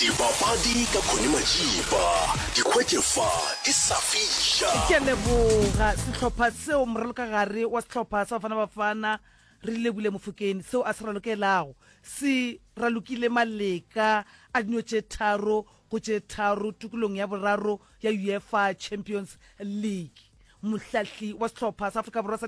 Dipapadi ka Connie Majiba, di hwetše fa, di sa fiša. Ke a leboga sehlopha seo, moralokagare wa sehlopha sa Bafana Bafana Relebule Mofokeng, seo a se ralokelago se ralokile maleka a dino tše tharo go tše tharo tokolong ya boraro ya UEFA Champions League. Mohlahli wa sehlopha sa Afrika Borwa sa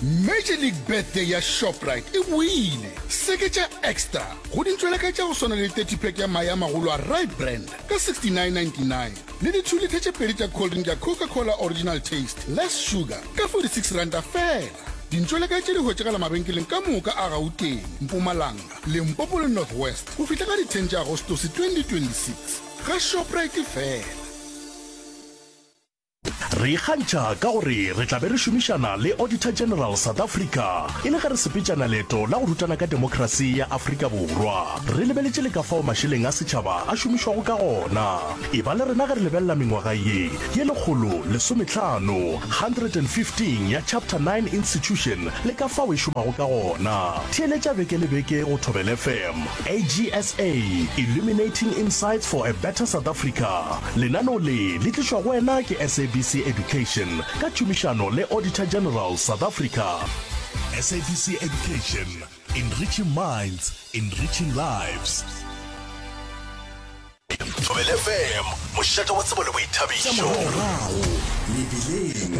Major League Birthday ya Shoprite e boile! Seketša Extra go dintšwelaka tša go swana le 30 pack ya mae a magolo a Rye Brand ka 69.99 le dithulitha tše pedi tša cold drink ya Coca-Cola Original Taste, Less Sugar ka 46 ranta feela. Dintšwelaka tše di hwetšagala mabenkeleng ka moka a Gauteng, Mpumalanga, Limpopo le North West go fihla ka di 10 tša Agostose 2026. Ga Shoprite feela! Re ikgantšha ka gore re tla be re šomišana le Auditor General South Africa e le ge re sepetšana leeto la go rutana ka demokrasi ya Afrika Borwa. Re lebeletše le ka fao mašeleng a setšhaba a šomišwago ka gona. Eba le rena ge re lebelela mengwaga ye ye lekgolo lesometlhano, 115, ya Chapter 9 Institution le ka fao e šomago ka gona. Theeletša beke le beke go Thobela FM. AGSA, Illuminating Insights for a Better South Africa. Lenaneo le le tlišwa go wena ke SABC Education ka tšhomišano le Auditor General, South Africa. SABC Education, Enriching minds, enriching lives. Thobela FM, mošate wa tsebo le boithabišo. Mebileng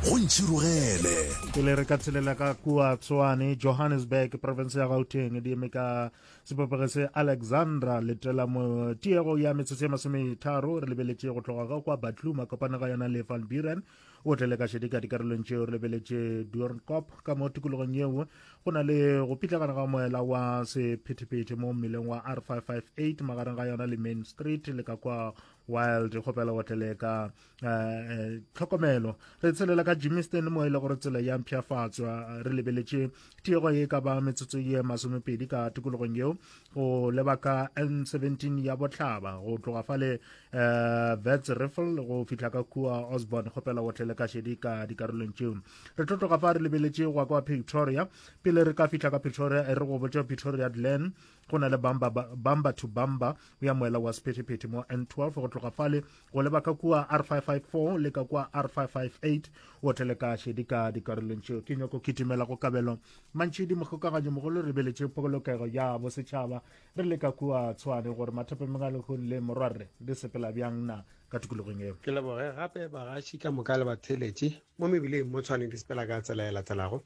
go ntšhirogele. Ke le re ka tshelela ka kua Tshwane, Johannesburg, province ya Gauteng, di eme ka sebopego se Alexandra letela mo tiego ya metsotso ya masometharo re lebeletše go tloga ga kwa Batluma kopana ga yona le Van Buren o tle le ka šedi ka dikarolong tšeo re lebeletše duornkop ka mo tikologong yeo go na le go pitlagana ga moela wa sephethephethe mo mmeleng wa r 558 magareng ga yona le main street le ka kwa wild kgopela go tlele ka eh, eh, tlhokomelo re tshelela ka jimiston mo e le gore tsela ya mpšhafatswa re lebeletše tiego ye ka ba metsotso ye masomepedi ka tikologong yeo go lebaka n17 ya botlhaba go tloga fale um eh, vets riffle go fihla ka kua osborn kgopela go tlele ka šedi ka dikarolong tšeo re tlo tloga fa re lebeletše gwa kwa pretoria pele re ka fihla ka pretoria e re go botša pretoria glen go na le bamba bamba to bamba o ya moela wa sephetephete mo n12 go tloga fale go leba ka kua r554 le ka kua r558 o tele ka šedi ka dikarolong tšeo ke nyoko kitimela go kabelo mantšhidi mogokaganyo mogolo re beletše pokolokego ya bosetšhaba re le ka kua tshwane gore mathepe megalehong le morwarre di sepela bjang na ka tikologong eo ke leboge gape bagaši ka moka le batheeletše mo mebileng mo tshwane di sepela ka tsela e latelago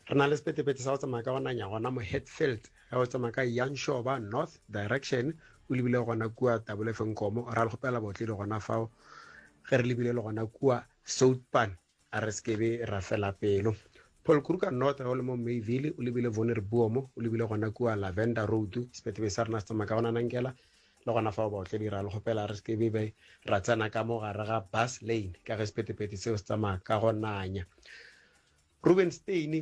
Re na le sepetepete sa go tsamaya ka go nanya gona mo Hatfield ge o tsamaya ka Yanshoba North direction o lebile gona kua Tabulefenkomo ra le kgopela bootledi gona fao ge re lebile le gona kua Soutpan a re sekebe ra fela pelo. Paul Kruger North ge o le mo Mayville o lebile Vonir Buomo o lebile gona kua Lavender Road sepetepete sa rena se tsamaya ka go nanangela le gona fao baotledi ra le kgopela re sekebe be ra tsena ka mo gare ga Bus Lane ka ge sepetepete seo se tsamaya ka go nanya Rubenstein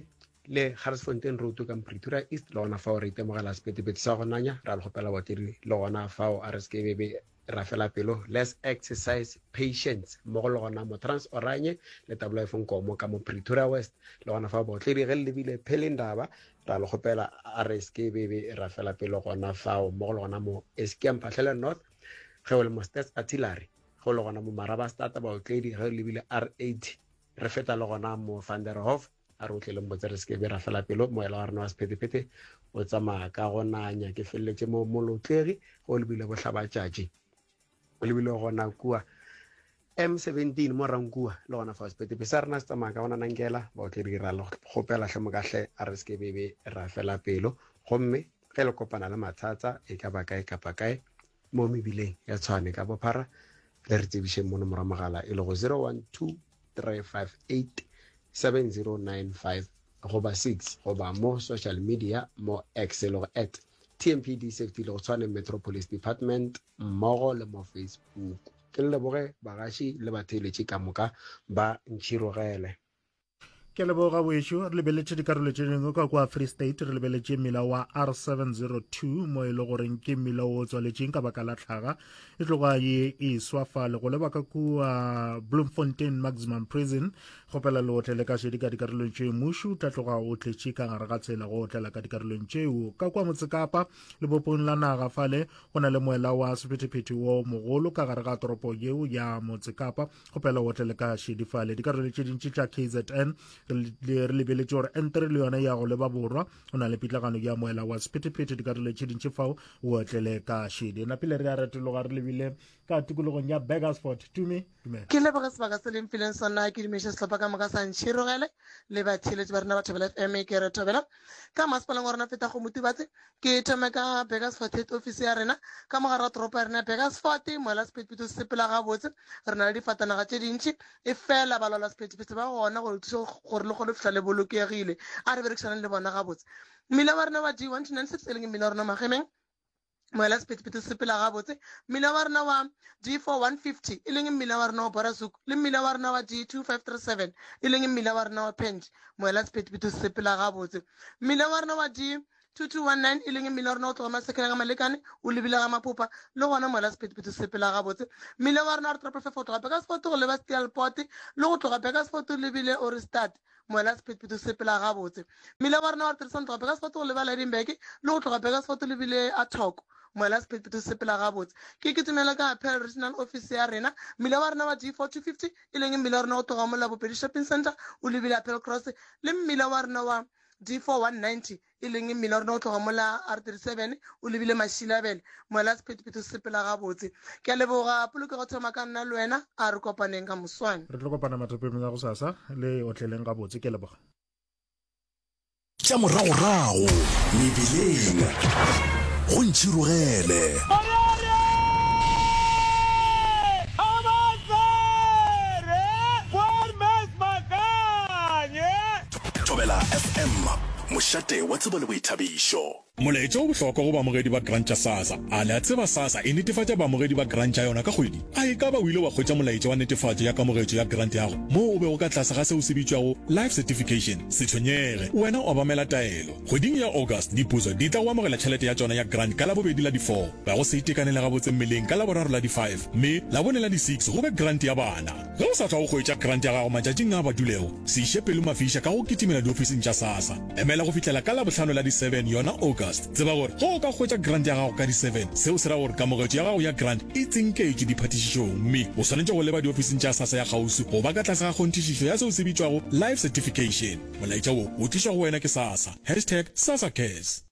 le Garsfontein Road ka Pretoria East le gona fao re itemogela sepetepete sa go nanya ra le gopela batiri le gona fao a re se ke be ra fela pelo let's exercise patience mmogo le gona motrans oranye le tabola efong komo ka mo pretoria west le gona fa baotledi ge le lebile phele ndaba ra le kgopela a re se ke bebe ra fela pelo gona fao mmogo le gona mo eskia mphahlele north ge o le mo stats artillery ge o le gona mo maraba stata baotledi ge o lebile r80 Re feta le gona mo Van der Hof a re o tle le mbotse re seke be ra fela pelo moela wa rena wa sephetephete o tsamaya ka go nanya ke feleletše mo molotlegi ge o lebile bohlabatšatši o lebile gona kua M17 mo Rankua le gona fa sepetepe sa rena se tsamaya ka bona nankela ba o tle dira le kgopela hle mokahle a re se ke bebe ra fela pelo gomme Ge le kopana le mathata e ka ba kae kapa kae mo mebileng ya Tshwane ka bophara, le re tsebišeng mo nomoro ya mogala e lego 0123587095 goba 6 goba mo social media mo X e lego at TMPD Safety le go Tshwane Metro Police Department mmogo le mo Facebook. Ke le leboge bagaši le batheeletši ka moka ba Ntšhirogele. ke leboga wešo re lebeletše dikarolo tše dingwe ka kwa free state re lebeletše mmila wa r702 mo e le goreng ke mmila o tswaletšeng ka baka la tlhaga e tloga ye e swa fa le go leba ka kua bloemfontein maximum prison kgopela le otle le ka šedi ka dikarolong tšeo mušu tla tloga o tletše ka gare ga tsela go otlela ka dikarolong tšeo ka kwa motsekapa lebopong la naga fale go na le moela wa sephetephete wo mogolo ka gare ga toropo yeo ya motsekapa kgopela o tle le ka šedi fale dikarolo tše dintši tša kzn re lebeletše gore entere le yone ya go leba borwa o na le pitlagano ya moela wa sephetephete dikarolo tše dintši fao o tle le ka šedi napile re a retologa re lebile ka tikologong ya bagersford tume dumela ke leboge sebaka se leng fileng sona ke dumeše sehlopha ka moka sa ntšhirogele le batheeletši ba rena ba thobela fm ke re thobela ka masepaleng wa rona feta go motibatse Ke thome ka Burgersfort ofisi ya rena ka mogare wa toropo ya rena ya Burgersfort. Moela sephethephethe se sepela gabotse, re na le difatanaga tše dintši, efela balwala sephethephethe ba gona go le thuša gore le kgone go fihla le bolokegile. A re berekišaneng le bona gabotse. Mmila wa rena wa D1296 e leng mmila wa rena wa Magemeng, moela sephethephethe se sepela gabotse. Mmila wa rena wa D4150 e leng mmila wa rena wa Borasuk le mmila wa rena wa D2537 e leng mmila wa rena wa Penge, moela sephethephethe se sepela gabotse. Mmila wa rena wa D. 2219 e leng e mmila wa rena go tloga masekeng a ga malekane o lebile ga mapopa le gona mola sephetepheto se sepela gabotse mmila wa rena wa re toropo fefa go tloga bekasfoto go leba steelpote le go tloga bekasfoto lebile o re start mola sephetepheto se sepela gabotse mmila wa rena wa re tirisano tloga bekasfoto go leba ledinbeke le go tloga bekasfoto lebile a thoko mola sephetepheto se sepela gabotse ke ke tumela ka apel regional office ya rena mmila wa rena wa g four two fifty e leng mmila wa rena go tloga mola bopedi shopping center o lebile apel cross le mmila wa rena wa D4-190, e leng mmila o rena go tloga mola R37 o lebile Mashilabele, moela sephethephethe o sepela gabotse. Ke a leboga, polokego thoma ka nna le wena, a re kopaneng ka moswane. Re tlo kopana mathapeng la gosasa, le otleleng gabotse. Ke a leboga. Tša moragorago mebileng go ntšhirogele. Thobela FM, mošate wa tsebo le boithabišo. Molaetša o bohlokwa go baamogedi ba Grant ya SASSA. A le a tseba SASSA e netefatša baamogedi ba Grant ya yona ka kgwedi? A e ka ba o ile wa hwetša molaetša wa netefatšo ya kamogetšo ya Grant yago moo o bego ka tlase ga seo se bitšwago Life Certification? Se tshwenyege, wena o obamela taelo. Kgweding ya August, dipuso di tla go amogela tšhelete ya tšona ya Grant ka Labobedi la di-four, ga go se itekanele gabotse mmeleng ka Laboraro la di-five, mme Labone la di-six go be Grant ya bana. Ge o sa tšwago go hwetša krante ya gago matšatšing a badulego, se iše pelo mafiša ka go kitimela diofising tša SASSA. Emela go fihlela ka Labohlano la di 7, yona August. Tseba gore ge o ka hwetša krante ya gago ka di 7, seo se ra gore kamogetšo ya gago ya krante e tsinketšwe diphathišišong mme o swanetše go leba diofising tša SASSA ya kgauswi go ba ka tlase ga kgonthišišo ya seo se bitšwago Life Certification. Molaetša wo o tlišwa go wena ke SASSA. Hashtag SASSACares.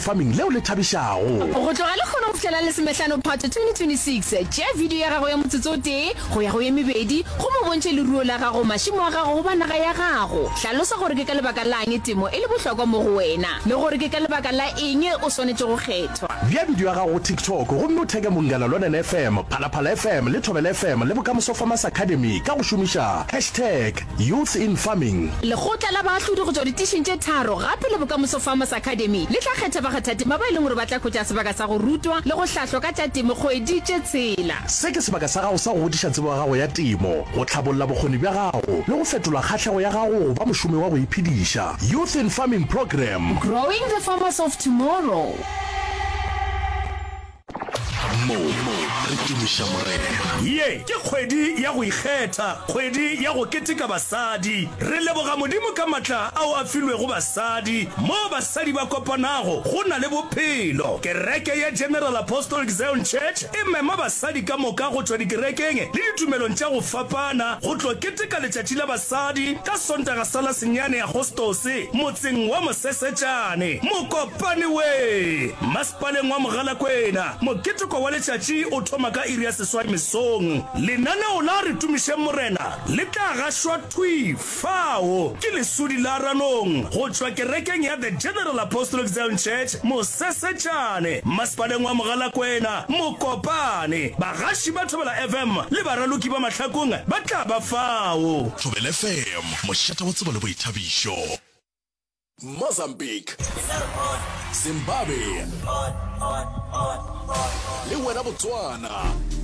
Farming leo le thabišago. Go tloga lehono go fihlela Lesomehlano Phato 2026, tšea bidio ya gago ya motsotso o tee go ya go ye mebedi gomme o bontšhe leruo la gago, mašemo a gago goba naga ya gago. Hlalosa gore ke ka lebaka la'ng temo e le bohlokwa mo go wena le gore ke ka lebaka la eng o swanetše go kgethwa. Bea bidio ya gago go TikTok gomme o theke Mongala Lwanen FM, Phalaphala FM le Thobela FM le Bokamoso Farmers Academy ka go šomiša hashtag. Youth in Farming. Lekgotla la baahlodi go tšwa ditišing tše tharo gape le Bokamoso Farmers Academy le tla kgetha bakgathatema ba e leng gore ba tla hwetša sebaka sa go rutwa le go hlahlwa ka tša temo kgwedi tše tshela. Se ke sebaka sa gago sa go godiša tsebo ya gago ya temo, go tlhabolla bokgoni bja gago le go fetola kgahlego ya gago go ba mošomi wa go iphediša. Youth in Farming Programme. Growing the Farmers of Tomorrow. mo re tumiša morena ye ke kgwedi ya go ikgetha kgwedi ya go keteka basadi re leboga modimo ka matla ao a filwego basadi mo basadi ba kopanago go na le bophelo kereke ya general apostolic zion church e mema basadi ka moka go tšwa dikerekeng le ditumelong tša go fapana go tlo keteka letšatši la basadi ka sontaga sa la senyane agostose motseng wa mosesetšane mokopane we Paleng wa Mogalakwena. Moketeko wa letšatši o thoma ka iri ya seswai mesong. Lenaneo la Re Tumišeng Morena le tla gašwa thwi fao ke lesudi la Ranong go tšwa kerekeng ya The General Apostolic Zion Church, Mosesetšane, Mmasepaleng wa Mogalakwena, Mokopane. Bagaši ba Thobela FM le baraloki ba mahlakong ba tla ba fao. Thobela FM, mošate wa tsebo le boithabišo. Mozambique, Zimbabwe le wena Botswana.